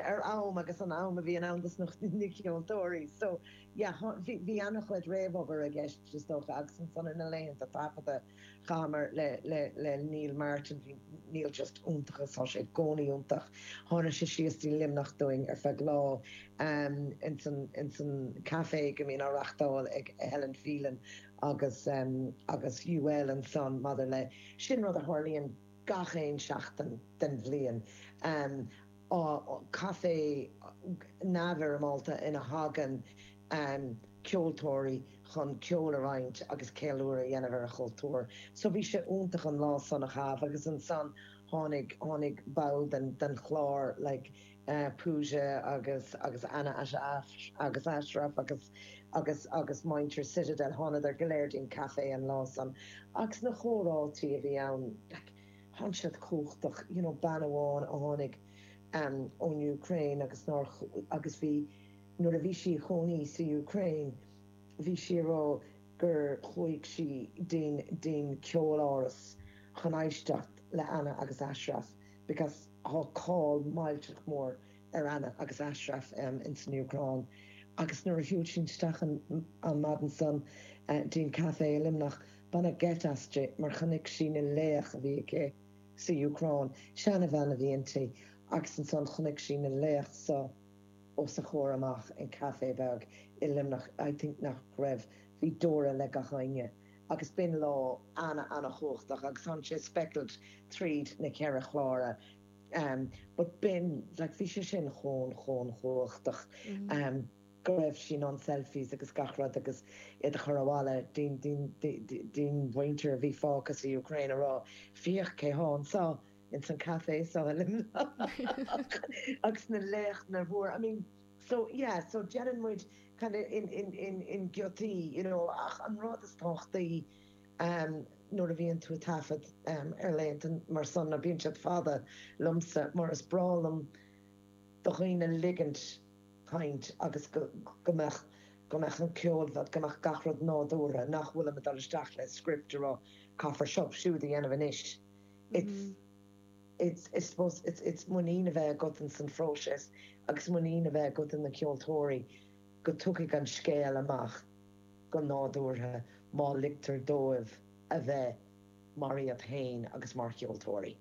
ar am agus an am a bhíonn ann dos na ceoltóirí so yeah bhí ana chuid réamhobair i gceist is dócha agus ansan ar na laethanta taifeadta chaitheamar le le le Neil Martin bhí Neil just iontach is tá sé i gcónaí iontach tháinig sé síos dtí Luimneach dúinn ar feadh lá ehm insan insan café go mbíonn á reachtáil ag Helen Phelan agus ehm agus UL ansan maidir le sin rud a tharlaíonn gach aon seachtain den bhliain ehm caifé neamhfhoirmeálta ina thagann ceoltóirí chun ceol a roinnt agus ceiliúradh a dhéanamh ar a gcultúr. So bhí sé iontach an lá san a chaitheamh agus ansan tháinig, tháinig ball den, den chlár like Pooja agus, agus Anna Ash, agus Ashraf agus, agus, agus muintir Citadel, thánadar go léir dtí'n caifé an lá san agus na comhráití a bhí ann like, thánn siad cumhachtach you know bean amháin a tháinig ehm ón Úcráin agus nár agus bhí nuair a bhí sí a chónaí sa Úcráin bhí sí a rá gur chuaigh sí dtí'n dtí'n ceoláras chun éisteacht le Anna agus Ashraf because tá cáil millteach mór ar Anna agus Ashraf ehm in san Úcráin agus nuair a shiúil sí isteach an an maidin san dtí'n café i Luimneach Baineadh geit aisti mar chonaic sí na laoch a bhí aici sa Ucráin, seanabhean a bhí inti, agus ansan chonaic sí na laoch so os a chomhair amach in café beag i Luimneach, I think nach raibh, bhí deora le gach éinne agus b'in lá ana ana chumhachtach agus tháinig sé speckled tríd na ceithre chlár but b'in, like bhí sé sin chomh chomh chumhachtach. go raibh sí a déanamh selfies agus gach rud agus iad a chur abhaile dtí'n mhuintir a bhí fágtha sa Úcráin a rá féach cé thá anso ins an café so i Luimneach agus na laochra mhóra I mean so yeah so deireann muid kind of in in in in giotaí you know ach an rud is tábhachtaí ehm nuair a bhíonn tú a taifead ehm ar laethanta mar san ná bíonn siad fada liomsa mar is breá liom do dhaoine ligint caint agus go, go mbeadh, go mbeadh an ceol, bheadh, go mbeadh gach rud nádúrtha, nach bhfuilim ag dul isteach le script a rá caithfear seo, siúd a dhéanamh anois. It's, it's, I suppose, it's, it's muinín a bheith agat in san phróiseas agus muinín a bheith agat in na ceoltóirí go dtiocfaidh an scéal amach go nádúrtha má ligtear dóibh a bheith mar iad fhéin agus mar cheoltóirí.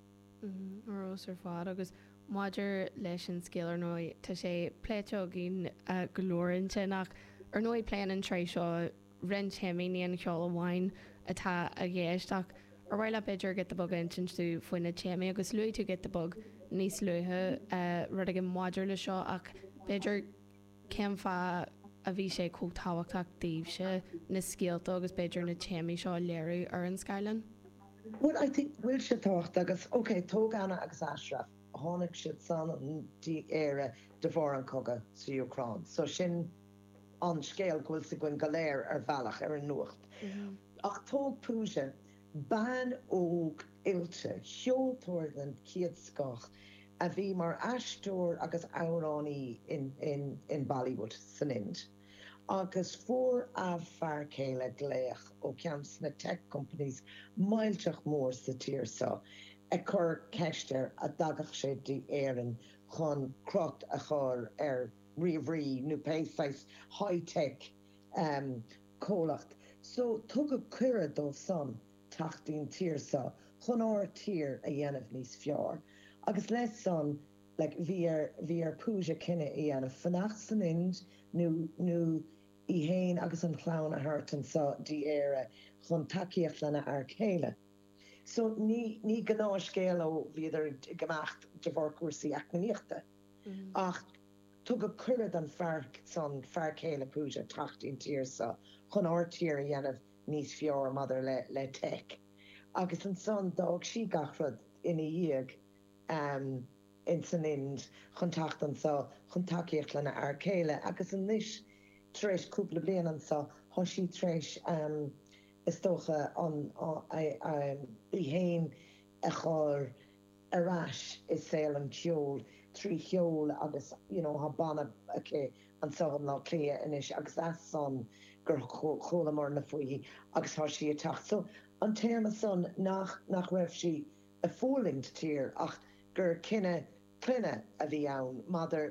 Ros ar fad agus maidir leis an scéal ar ndóigh tá sé pléite againn go leor ansin ach ar ndóigh pléann an tsraith seo roinnt téamaí ní an ceol amháin atá i gceist ach ar mhaith leat b'fhéidir giota beag a insint dúinn faoi na téamaí agus luaigh tú giota beag níos luaithe rud éigin maidir le seo ach b'fhéidir Cén fáth a bhí sé chomh tábhachtach daoibhse na scéalta agus b'fhéidir na téamaí seo a léiriú ar an scáileán? Bhuel, I think go bhfuil sé tábhachtach agus, ok, tóg Anna agus Ashraf, tháinig siadsan dtí Éire de bharr an cogadh sa Úcráin, so sin an scéal go bhfuil a fhios againn go léir ar bhealach ar an nuacht. Ach tóg Pooja. Bean óg oilte, ceoltóir den chéad scoth, a bhí mar aisteoir agus amhránaí in Bollywood san Ind, agus fuair a fear céile glaoch ó cheann des na tech companies millteach mór sa tír seo ag cur ceist air a dtagadh sé dtí Éirinn chun cruth a chur ar ríomhairí nó pé saghas high tech comhlacht so tugadh cuireadh dósan teacht don tír seo chun ár tír a dhéanamh níos fearr agus leis san like bhí ar bhí ar Pooja cinneadh a dhéanamh fanacht san Ind nó nó í fhéin agus an chlann a thabhairt anso dtí Éire chun tacaíocht lena fear céile so ní ní gnáthscéal ó bhíodar ag imeacht de bharr cúrsaí eacnamaíochta. ach tugadh cuireadh don fhear san, fear céile Pooja, teacht don tír seo chun ár tír a dhéanamh níos fearr maidir le le tech. Agus ansan d'fhág sí gach rud ina dhiaidh in san Ind chun teacht anso chun tacaíocht lena fear céile agus anois tar éis cúpla bliain anso thá sí tar éis is dócha an í fhéin a chur ar ais i saol an cheoil trí cheol agus you know tá banna aici anseo i mBleá Cliath anois agus as san gur chualamar ne fúithi agus tá sí ag teacht so an téama san nach nach raibh sí ag fulaingt sa tír ach gur cinneadh clainne a bhí ann maidir